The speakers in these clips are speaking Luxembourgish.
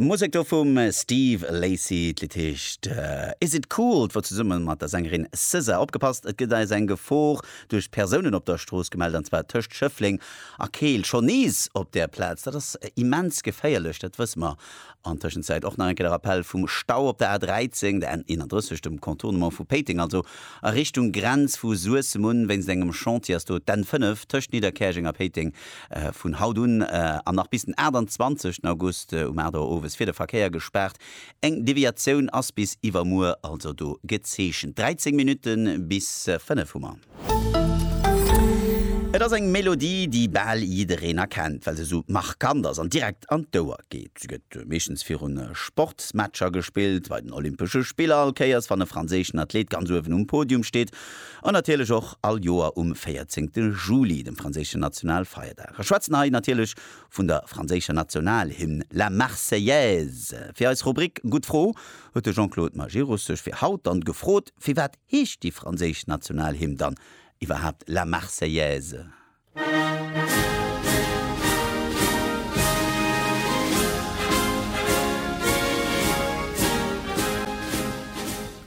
D'Musek do vum Steve Lacy, d'Lidd heescht Is It Cool, d'wor zesummen mat der Sängerin SZA. Opgepasst, et gëtt eis eng Gefor duerch d'Persounen op der Strooss gemellt, an zwar tëscht Schëffleng a Keel. Schonn nees op där Plaz, dat ass immens geféierlech, dat wësse mer. An Tëschenzäit och nach eng Kéier de Rappell vum Stau op der A13, der N31, dem Contournement vu Péiteng, also a Richtung Grenz vu Suessem un. Wéinst engem Chantier ass do d'N5 tëscht Nidderkäerjeng a Péiteng vun haut un an nach bis den 28 August um 8 Auer owes fir de Verkéier gespaart. Eng Deviatioun ass bis iwwermuer also do gezeechent. 13 Minutte bis 5 hu mer. Et ass eng Melodie, déi bal jiddereen erkennt, well se esou markant ass an direkt an d'Ouer geet. Se gëtt meeschtens virun Sportsmatcher gespillt, bei den Olympesche Spiller allkéiers, wann e franséischen Athlet ganz uewen um Podium steet. An natierlech och all Joer um 14 Juli, dem franséischen Nationalfeierdag. A schwätzen hei natierlech vun der franséischer Nationalhymn, La Marseillaise. Fir eis Rubrik Gutt Fro huet de Jean-Claude Majerus sech fir haut dann gefrot, Firwat heescht déi franséisch Nationalhymn dann iwwerhaapt La Marseillaise?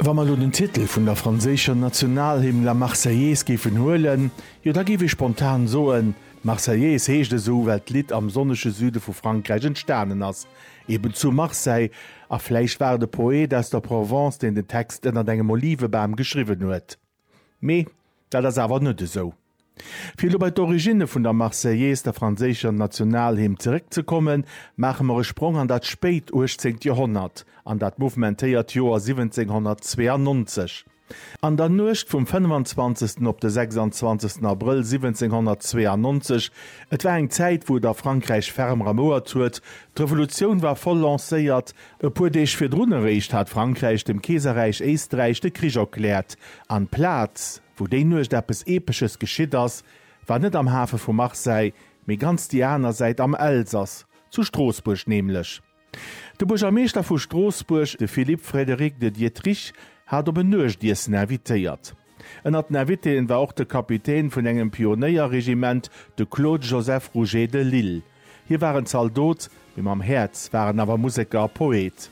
Wa mer elo den Titel vun der franséischer Nationalhymn La Marseillaise géifen huelen, jo da géif ee spontan soen, Marseillaise heescht esou well d'Lidd am sonnege Süde vu Frankräich entstanen ass, eben zu Marseille. A vläicht war et e Poet aus der Provence, deen den Text ënnert engem Olivebam geschriwwen huet. Mee dat ass awer net esou. Fir elo bei d'Originne vun der Marseillaise, der franséischer Nationalhymn, zeréckzekommen, maache mer e Sprong an dat spéit uechtzéngt Joerhonnert, an dat mouvementéiert Joer 1792. An der Nuecht vum 25. op de 26. Abrëll 1792, et war eng Zäit, wou et a Frankräich ferm ramouert huet, d'Revolutioun war voll lancéiert, E puer Deeg virdrun eréischt hat Frankräich dem Keeserräich Éisträich de Krich erkläert, an d'Plaz, wou déi Nuecht eppes Epesches geschitt ass, war net am Hafe vu Marseille, mee ganz déi aner Säit am Elsass, zu Stroossbuerg nämlech. De Buergermeeschter vu Stroossbuerg, de Philippe Frédéric de Diétrich, hat op en Nuechtiessen invitéiert. Ënnert den Invitéen war och de Kapitän vun engem Pionéierregiment, de Claude Joseph Rouget de Lisle. Hie war en Zaldot, mee mam Häerz war en awer Museker a Poet.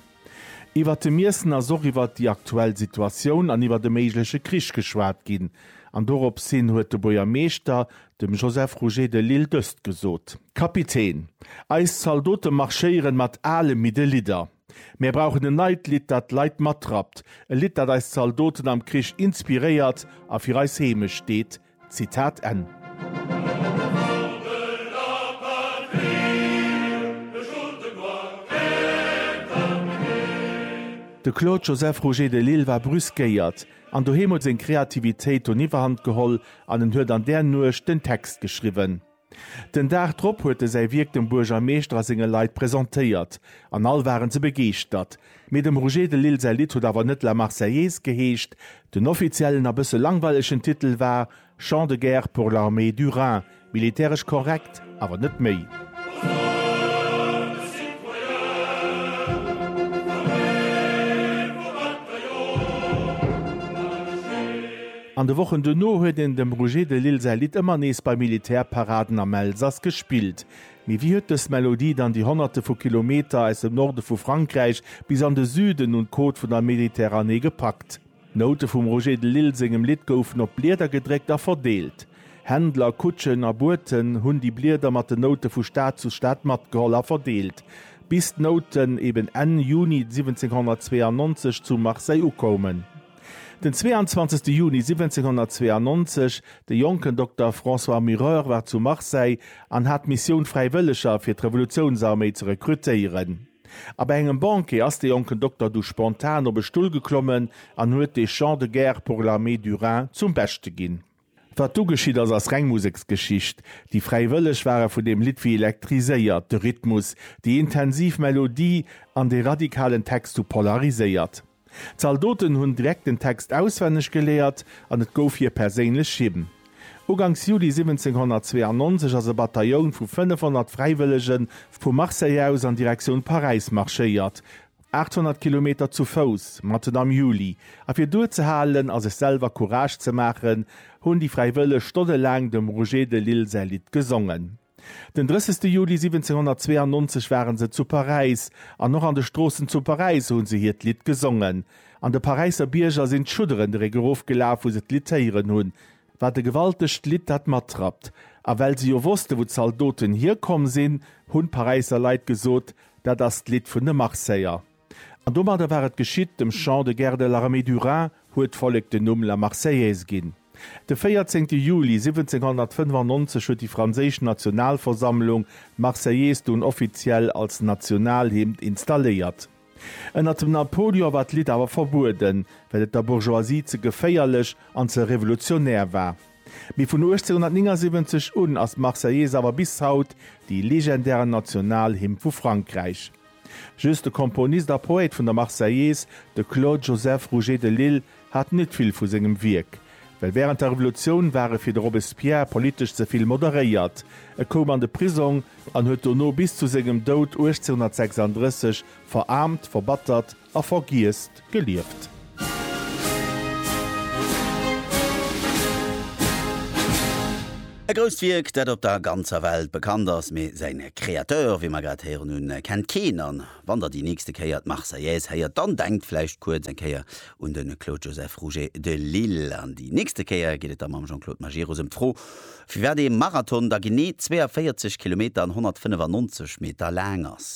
Iwwert de Miessen ass och iwwert déi aktuell Situatioun an iwwert e méigleche Krich geschwat ginn. An dorops hin huet de Buergermeeschter dem Joseph Rouget de Lisle dëst gesot. Kapitän, Eis Zaldote marschéieren mat ale, midde Lidder. Mär brauchen en neit Lidd, dat d'Leit matrappt, e Lidd, dat eis Zaldoten am Krich inspiréiert a fir eis Heemecht steet. Zitat Enn. De Claude Joseph Roger de Lisle war brüskéiert, an doheem huet seng Kreativitéit doniwwerhand geholl an en huet an där Nuecht den Text geschriwwen. Den Dag drop huet e säi Wierk dem Buergermeeschter a senge Leit presentéiert an all waren se begeeschtert. Mee dem Roger de Lisle säi Lidd huet awer net La Marseillaise geheescht. Den offiziellen a bësse langweilegen Titel war Chant de guerre pour l'armée du Rhin, militäresch korrekt, awer net méi. An de Wochen duerno huet een dem Roger de Lisle säi Lidd ëmmer nees bei Militärparaden am Elsass gespillt. Mee wéi huet dës Melodie dann déi Honnerte vu Kilometer aus dem Norde vu Frankräich bis an de Süden un d'Côte vun der Mediterranée gepackt? D'Noute vum Roger de Lisle sengem Lidd goufen op Blieder gedréckt a verdeelt. Händler, Kutschen a Boten hunn déi Blieder mat den Noute vu Stad zu Stad matgeholl a verdeelt, bis d'Nouten eben Enn Juni 1792 zu Marseille ukoumen. Den 22 Juni 1792, de jonken Dokter François Mureur war zu Marseille an hat d'Missioun Fräiwëlleger fir d'Revolutiounsarméi ze rekrutéieren. A bei engem Banquet ass de jonken Dokter du spontan op e Stull geklommen an huet de Chant de guerre pour l'armée du Rhin zum Beschte ginn. Wat du geschitt ass, ass reng Museksgeschicht. Déi Fräiwëlleg ware vun deem Lidd wéi elektriséiert, de Rhythmus, déi intensiv Melodie an dee radikalen Text hu polariséiert. D'Zaldoten hunn direkt den Text auswenneg geléiert an et gouf hir perséinlech Hymn. Uganks Juli 1792 ass e Batailloun vu 500 Fräiwëllege vu Marseille aus an Direktioun Paräis marschéiert, 800 Kilometer zu Fouss, matten am Juli, a fir duerzehalen a sech selwer Courage ze maachen, hunn déi Fräiwëlleg stonnelaang dem Roger de Lisle säi Lidd gesongen. Den 30 Juli 1792 ware se zu Paräis, an och an de Stroossen zu Paräis hu se hiert Lidd gesongen. An de Paräisser Bierger sinn d'Schudderen erof gelaf, wou se d'Lidd héieren hunn. Wat e gewaltegt Lidd dat matrappt. A well se jo wosste wou d'Zaldoten hierkomm sinn, hunn d'Paräisser Leit gesot, dat ass d'Lidd vun de Marseiller. An domadder war et geschitt, dem Chant de guerre de l'armée du Rhin huet d'Vollek den Numm La Marseillaise ginn. De 14 Juli 1795 huet déi franséisch Nationalversammlung d'Marseillaise dunn offiziell als Nationalhymn installéiert. Ënnert dem Napoleon war d'Lidd awer verbueden, well et der Bourgeoisie ze geféierlech an ze revolutionär war. Mee vun 1879 un ass d'Marseillaise awer bis haut dee legendären Nationalhymn vu Frankräich. Just de Komponist a Poète vun der Marseillaise, de Claude Joseph Rouget de Lisle, hat net vill vu sengem Wierk, well wärend der Revolutioun war e fir de Robespierre politesch ze vill moderéiert. E koum an de Prisong an huet dono bis zu sengem Doud 1836 veraarmt, verbattert a vergiess gelieft. E grousst Wierk, dat op der ganzer Welt bekannt ass, mee säin Créateur, wéi mer grad héieren hunn, kennt keen. An wann der déi nächste Kéier d'Marseillaise héiert, dann denkt vläicht kuerz eng Kéier un de Claude Joseph Rouget de Lille an déi nächste Kéier geet et da mam Jean-Claude Majerus ëm d'Fro, firwat ee Marathon da genee 42 Kilometer an 195 Meter laang ass.